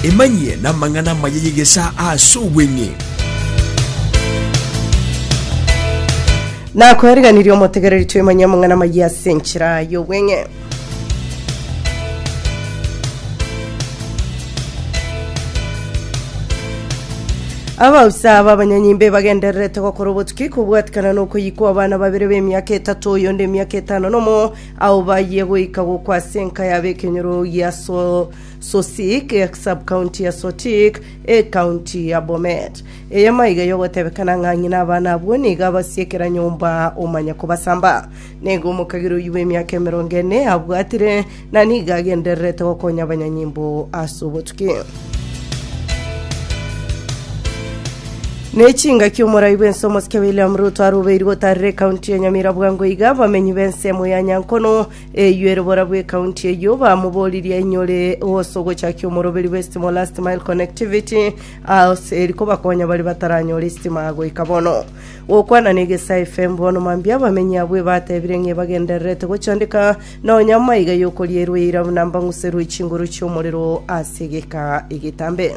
Emanyie namang'ana amaya y'egesaa aase obweng'e. Nakoeriganirie omotegereri twemanyie amang'ana amayia ase enchera y'obweng'e. Abausa b'abanyanyimbe bagendererete gokora obotuki kobwatikana nokoyia kw'abana babere b'emiaka etato, oyonde emiaka etano nomo, Ao bayie goika gokwa ase enka yabo ekenyoro gia So- Sosik, esubcounty ya Sotik, ecounty ya Bomet. Eye maiga yogotebekana ng'a ng'ina abana abwo nigo abasie kera nyomba omanye kobasamba. Nigo omokagera oyio bw'emiaka emerongo ene abwatire, na nigo agendererete gokonya abanyanyimbo ase obotuki. Ne chingaki omorai bw'ense omosike William Ruto arubeirwe otarire ekaunti ya Nyamira bwango iga abamenyi b'ensemo ya Nyankono eyio ere bora bw'ekaunti eyio bamoboririe ainyore gose ogochakia omoroberi bw'esitimo Last Mile Connectivity as eri kobakonya baria bataranyore esitimo agoika bono. Gokwana n'Egesae FM bono mambia abamenyi abwo ebatebire ng'a ebagendererete gochandeka nonya amaiga y'okorierwa eira buna mbang'userwe chinguru chi'omorero ase egeka egetambe.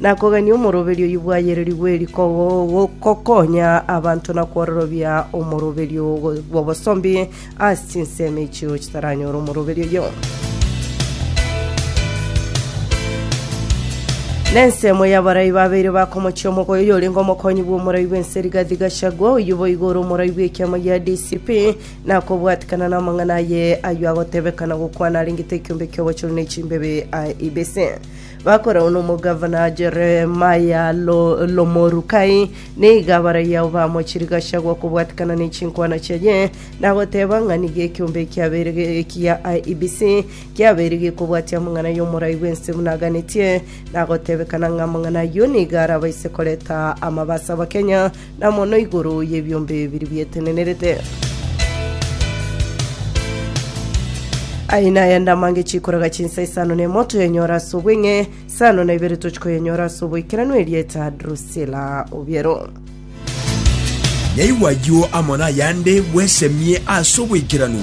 na kogania omoroberio oyio bwayeirerigwe eri gokonya abanto na kwororobia omoroberio bw'obosombi ase chinsemo echio chitaranyore omoroberio oyio. na ensemo y'abarai babeire bakomochia omogoyo oyorenge omokonyi bw'omorai bw'ense Rigathi Gachagua oyio boigo ore omorai bw'ekiama gia DCP na kobwatikana namang'ana aye ayio agotebekana gokwana arengete ekiombe ki'obochori na echimbebe a ibese Bakoragwa nomogavana Jeremia l'Omorukai, nigo abaraiyo abo bamochirie Gachagua kobwatekana ne chinkwana chiaye, na goteba ng'a nigo ekeombe ekiabeire ekiya IEBC kiabeire gekobwatia amang'ana y'omorai bw'ense buna aganetie, na gotebekana ng'a amang'ana ayio nigo arabaise koreta amabaso Abakenya Na mono igoro y'ebiombe bibiri bietenenerete. Aye naye ande amange chikoraga chinsa isano na emo toyenyora ase obweng'e, isano na ibere tochikoyenyora ase oboikeranu erieta Drusila obiero. Naigwa ayio amo nayande bwesemie ase oboikeranu.